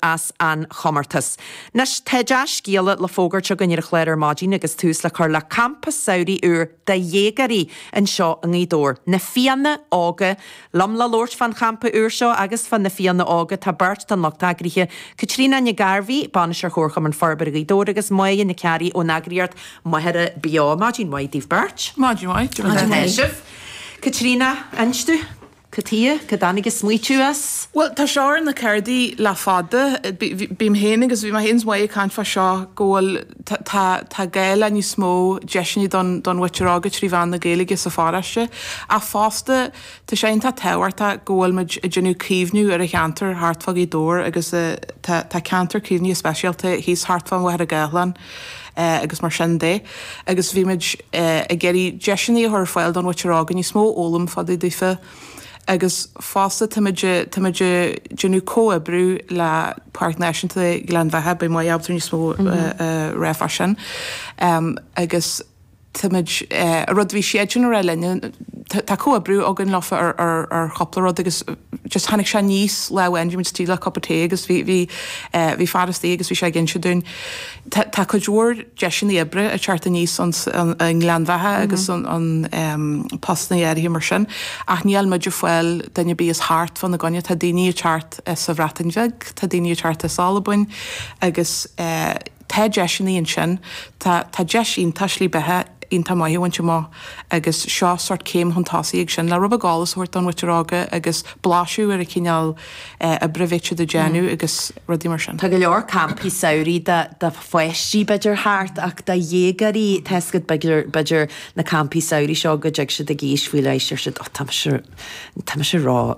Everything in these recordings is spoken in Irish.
as an chomórtas. Anois, tá dea-scéala le fógairt againn ar an chlár ar maidin agus tús le cur le campa samhraidh úr do dhéagóirí anseo i nGaoth Dobhair, Na Fianna Óga! Liom le labhairt fán champa úr seo agus fá na Fianna Óga, tá beirt den lucht eagraithe, Caitríona Nic Gairbheith, Bainisteoir Chomharchumann Forbartha Ghaoth Dobhair agus Moya Nic Fhearraigh ón eagraíocht Machaire Beo. Maidin mhaith daoibh beirt. Maidin mhaith. Maidin mhaith. Caitríona, inis dúinn. Caidé, cá dtáinig an smaoitiú as? Bhuel, tá seo ar na cárdaí le fada. Bhí mé féin agus bhí mé féin is Moya ag caint fá seo go bhfuil, tá, tá, tá gá le níos mó deiseanna don, don mhuintir óga trí mheán na Gaeilge sa pharóiste ach fosta tá sé iontach tábhachtach go bhfuil muid ag déanamh caomhnú ar an cheantar thart fá Ghaoth Dobhair agus tá, tá ceantar caomhnaithe speisialta thíos thart fá Mhachaire Gathlán. agus mar sin de agus bhí muid ag iarraidh deiseanna a chur ar fáil don mhuintir óga níos mó a fhoghlaim fá dtaobh daofa agus fosta tá muid, tá muid ag déanamh comhoibriú le Páirc Náisiúnta Ghleann Bheatha, beidh Moya ábalta níos mó a rá fá sin agus. Tá muid, an rud a bhí siadsan ag rá linn, tá comhoibriú againn leofa ar chúpla rud agus just tháinig sé aníos lá amháin, bhí muid istigh le cupa tae agus bhí, bhí, bhí fear istigh agus bhí sé ag inse dúinn, tá, tá cuid mhór deiseannaí oibre ag teacht aníos an, an, i nGleann Bheatha agus an, an postannaí áirithe mar sin ach níl muid ag fáil duine ar bith as thart fá na gcoinne, tá daoiní ag teacht as an Bhreatain Bheag, tá daoiní ag teacht as Albain agus eh. Tá deiseannaí ansin. Tá, tá deis iontach slí beatha iontach maith a bhaint amach agus seo sórt céim chun tosaigh ag sin le rud beag eolais a thabhairt don mhuintir óga agus blaiseadh ar an chineál eh, oibre a bhíthear a dhéanamh agus rudaí mar sin. Tá go leor campaí samhraidh do, do pháistí b'fhéidir thart ach do dhéagóirí tá 'fhios agat b'fhéidir, b'fhéidir na campaí samhraidh seo go dtig siad ag aois faoi leith, deir siad oh tá mise, tá mise ró,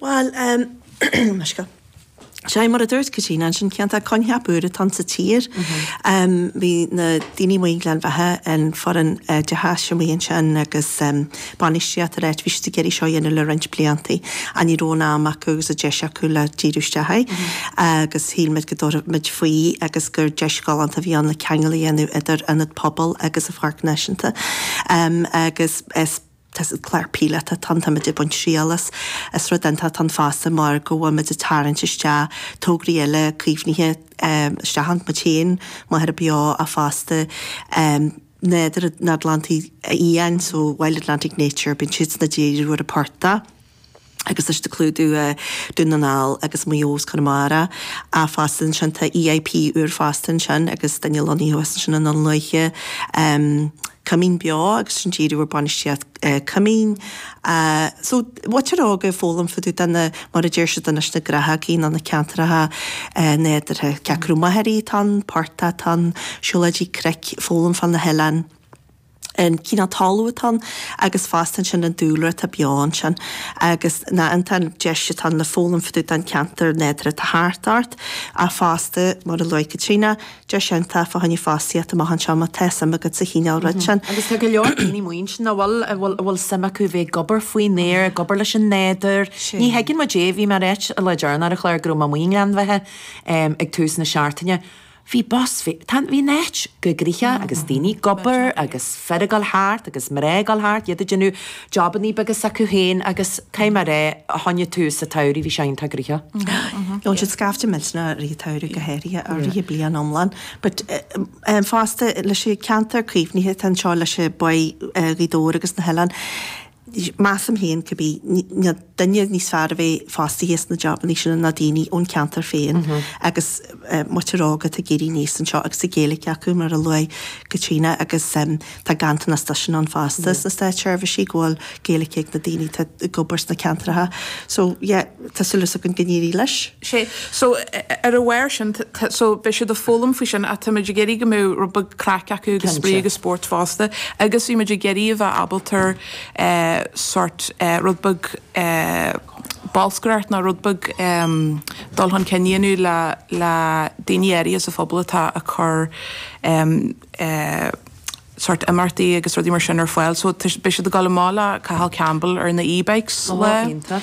Bhuel, em, mar seo, sea, mar a dúirt Caitríona ansin, cineál coincheap úr atá sa tír? Em, bhí na daoine amuigh i nGleann Bheatha, an foireann oideachais amuigh ansin agus, em, bainistíocht ar an áit, bhí siad ag iarraidh seo a dhéanamh le roinnt blianta ach ní raibh an am acu agus an deis acu le díriú isteach air agus shíl muid go dtabharfadh muid faoi agus gur deis ghalánta a bhí ann le ceangal a dhéanamh idir ionad pobail agus an pháirc náisiúnta. Em, agus is. tas an clar píleata tan táimid ag baint triail as, is rud iontach atá ann fosta mar go bhfuil muid ag tarraingt isteach tograí eile caomhnaithe isteach ann, muid féin, Machaire Beo ach fosta Nádúr an Atlantaigh Fhiáin so Wild Atlantic Nature, bíonn siadsan ag díriú ar phortaigh. agus leis ag clúdú Dún na nGall agus Maigh Eo is Conamara fosta ansin, tá EIP úr fosta ansin agus duine lonnaithe thuas ansin i nDún Lúiche, Coimín Beo agus sin díriú ar bainistíocht Coimín. So, muintir óga ag foghlaim fúthu, tá na, mar a deir siad anois, na gnáthóga ná na ceantracha nádúrtha, cé acu machaire atá ann, portaigh atá ann, siúlóidí cnoic, foghlaim fá na hoileáin. an cineál talún atá ann agus fosta ansin an dúlra atá beo ansin agus na an an deis atá ann le foghlaim fá dtaobh den cheantar nádúrtha atá thart ort ach fosta mar a luaigh Caitríona deis iontach fá choinne fostaíocht amach anseo má tá suim agat sa chineál rud sin. Agus tá go leor daoine muinteartha a bhfuil a bhfuil a bhfuil suim acu bheith ag obair faoin aer ag obair leis an nádúr ní thuigeann muid é bhí mé ag ráit le Jaron ar an chlár go raibh mé i nGleann Bheatha ag tús na seachtaine Bhí bus, bhí, tá, bhí an áit gnoitheach agus daoine ag obair agus fir ag dul thart agus mná ag dul thart, iad ag déanamh jobannaí beaga s'acu féin agus cé mar a tháinig tús an tsamhraidh bhí sé iontach gnoitheach. Gheobhann siad scaifte millteanach i rith an tsamhraidh go háirithe, i rith an bhliain iomlán but fosta leis an gceantar caomhnaithe atá anseo leis an Bhá Ghaoth Dobhair agus na hoileáin, Measaim féin, cibé, níl duine níos fearr a bheith fostaithe sna jabannaí sin ná daoine ón cheantar féin agus muintir óga atá ag éirí aníos anseo agus Gaeilge acu, mar a luaigh Caitríona, agus tá ganntanas de sin ann fosta sna státseirbhísí, go bhfuil Gaeilge ag na daoine atá ag obair sna ceantracha. So, yeah. tá súil 's againn go n-éirí leis. Sea, so, ar a bharr sin, tá, so, beidh siad ag foghlaim faoi sin ach tá muid ag iarraidh go mbeadh rud beag craic acu agus spraoi Cinnte. agus spóirt fosta agus bhí muid ag iarraidh a bheith ábalta eh sort eh rud beag eh bolscaireacht nó rud beag em dul chun cinn a dhéanamh le, le daoine áirithe sa phobal atá ag cur em eh sort imeachtaí agus rudaí mar sin ar fáil so tá, beidh siad ag dul amach le Cathal Campbell ar na e-bikes Ó, go hiontach.